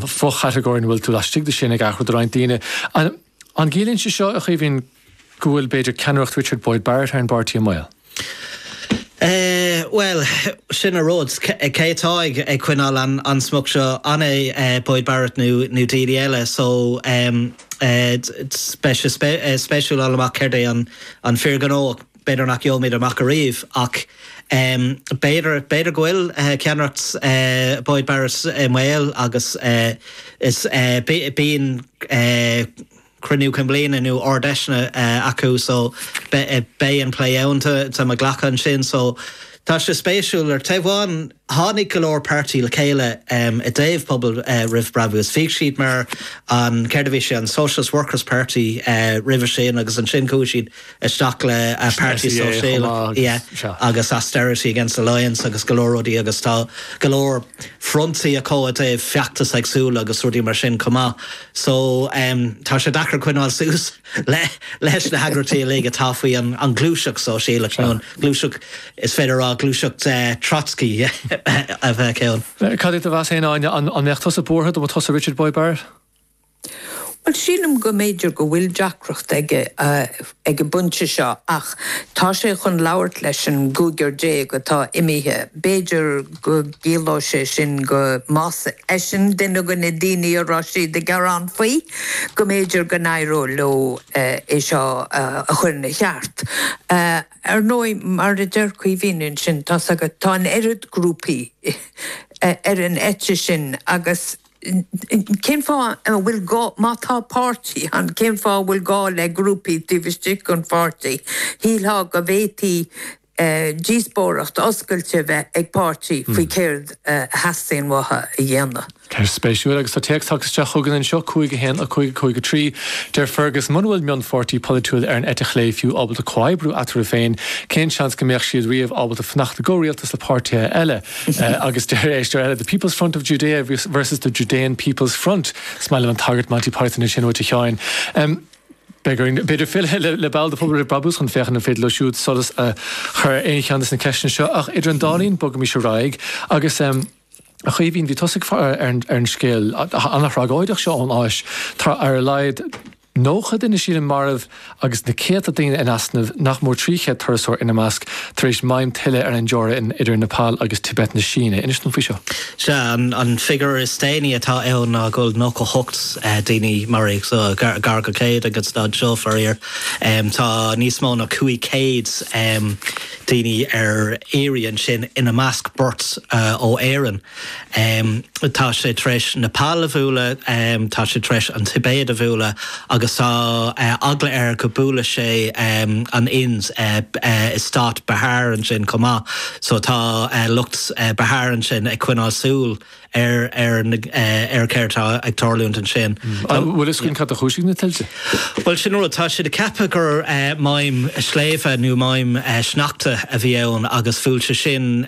fo-chatagóir ina bhfuil tú laistigh de sin ag athrú do roinnt daoine. An gciallaíonn sé seo, a Chaoimhín, go bhfuil, b'fhéidir, ceannaireacht Richard Boyd Barrett ar an bpáirtí i mbaol? Bhuel, sin a rud, cé atá ag coinneáil an smuc seo? An é Boyd Barrett nó duine eile? So, beidh sé spéisiúil fháil amach céard é an fíor-ghnó. B'fhéidir nach gheobhaimid amach ariamh, ach b'fhéidir, b'fhéidir go bhfuil ceannaireacht Boyd Barrett i mbaol agus is, bíonn cruinniú cinn bliana nó ardfheiseanna acu so beidh an plé ann, tá mé ag glacadh, ansin so tá sé spéisiúil ar taobh amháin, Tháinig go leor páirtí le chéile i dtaobh Pobal Roimh Brabús. is bhíodh siad mar an, céard a bhí sé, an Socialist Workers Party roimhe sin agus ansin chuaigh siad isteach le Páirtí Sóisialach agus Austerity Against Alliance agus go leor rudaí agus tá go leor frontaí acu i dtaobh feachtais éagsúla agus rudaí mar sin chomh maith. So, tá sé deacair coinneáil suas. Leis na heagraíochtaí uilig atá faoin ngluaiseacht sóisialach, nó an ghluaiseacht, is féidir a rá, ghluaiseacht Trotscaí a bheadh ann. Cad é do mheas fhéin, Áine, an mbeadh tusa buartha dá mba tusa Richard Boyd Barrett? Bhuel, sílim go mb'fhéidir go bhfuil deacracht aige ag an bpointe seo ach tá sé chun labhairt leis an gcúigear déag atá imithe. B'fhéidir. go gciallódh sé sin go más eisean duine de na daoine a raibh siad ag gearán faoi, go mb'fhéidir go n-éireodh leo é seo a chur ina cheart. Ar ndóigh, mar a deir Caoimhín ansin, tá's agat, tá an oiread grúpaí ar an eite sin agus cén fáth a bhfuil gá, má tá páirtí ann, cén fáth a bhfuil gá le grúpaí taobh istigh den pháirtí? Shílfeá go bhféadfaí díospóireacht oscailte a bheith ag páirtí faoi céard a theastaíonn uathu a dhéanamh. Ceist spéisiúil, agus tá téacs tagtha isteach chugainn anseo, 5 1, 5 5 3. Deir Fergus, muna bhfuil mionpháirtí polaitiúil ar an eite chlé fiú ábalta comhoibriú eatarthu féin, cén seans go mbeadh siad riamh ábalta fanacht i gcomhrialtas le páirtithe eile? Agus deir éisteoir eile, The People's Front of Judea vs The Judean People's Front. Is maith liom an tagairt Monty Python ansin uait, a Sheáin. Beidh orainn, b'fhéidir, filleadh le ball de phobal roimh brabús chun féachaint an féidir leo siúd solas a chur ar aon cheann de na ceisteanna seo, ach idir an dá linn, bogaimis ar aghaidh agus, em. a Chaoimhín, bhí tusa ag faire ar an scéal an-thragóideach seo ón Áis. Tá ar a laghad nócha duine, sílim, marbh agus na céadta daoine in easnamh, nach mór trí chéad turasóir ina measc, tar éis maidhm tuile ar an dteorainn idir Nepal agus Tibet na Síne. Inis dom faoi seo. Sea, an figiúr is déanaí atá ann ná go bhfuil 98 daoine maraithe, so gar go 100 ag an staid seo, faraor. Tá níos mó ná 500 daoine ar iarraidh ansin, ina measc beirt ó Éirinn. Tá sé tar éis Nepal a bhualadh, tá sé tar éis an Tibéid a bhualadh agus tá eagla ar go mbuailfidh sé an Ind i Stát Bihar ansin chomh maith, so tá lucht Bihar ansin ag coinneáil súil ar céard atá ag tarlúint ansin. An bhfuil a fhios againn cad a chúisigh na tuilte? Bhuel, sin an rud, tá siad ag ceapadh gur maidhm sléibhe nó maidhm sneachta a bhí ann agus bhuail sé sin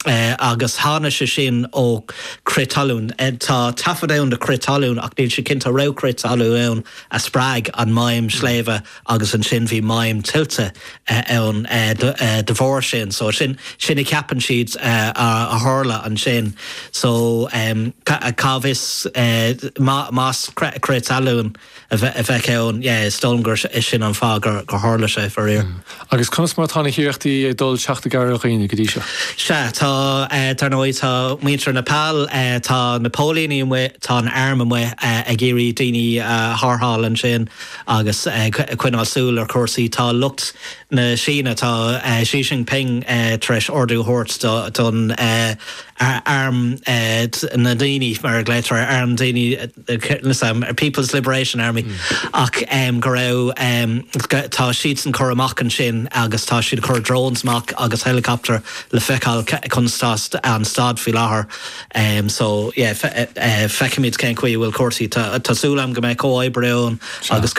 agus tháinig sé sin ó chrith talún. Tá taifead ann de chrith talún ach níl siad cinnte an raibh crith talún ann a spreag an maidhm sléibhe agus ansin bhí maidhm tuilte ann de bharr sin. So sin sin a cheapann siad a tharla ansin. So cá bhfios más crith talún. a bhí ann. Yeah, is dóigh liom gur sin an fáth gur tharla sé, faraor. Agus conas mar atá na hiarrachtaí ag dul le teacht i gcabhair ar dhaoine go dtí seo? Sea, tá, dar ndóigh, tá muintir Nepal, tá na póilíní amuigh, tá an arm amuigh ag iarraidh daoine a tharrtháil ansin agus ag coinneáil súil ar chúrsaí. Tá lucht na Síne, tá Xi Jinping tar éis ordú a thabhairt don arm na ndaoine, mar a ghlaotar air, arm na ndaoine, People's Liberation Army, ach go raibh, tá siadsan curtha amach ansin agus tá siad ag cur drones amach agus helicopter le feiceáil conas atá an staid faoi láthair. So yeah, feicfimid cén chaoi a bhfuil cúrsaí. Tá súil agam go mbeidh comhoibriú ann agus.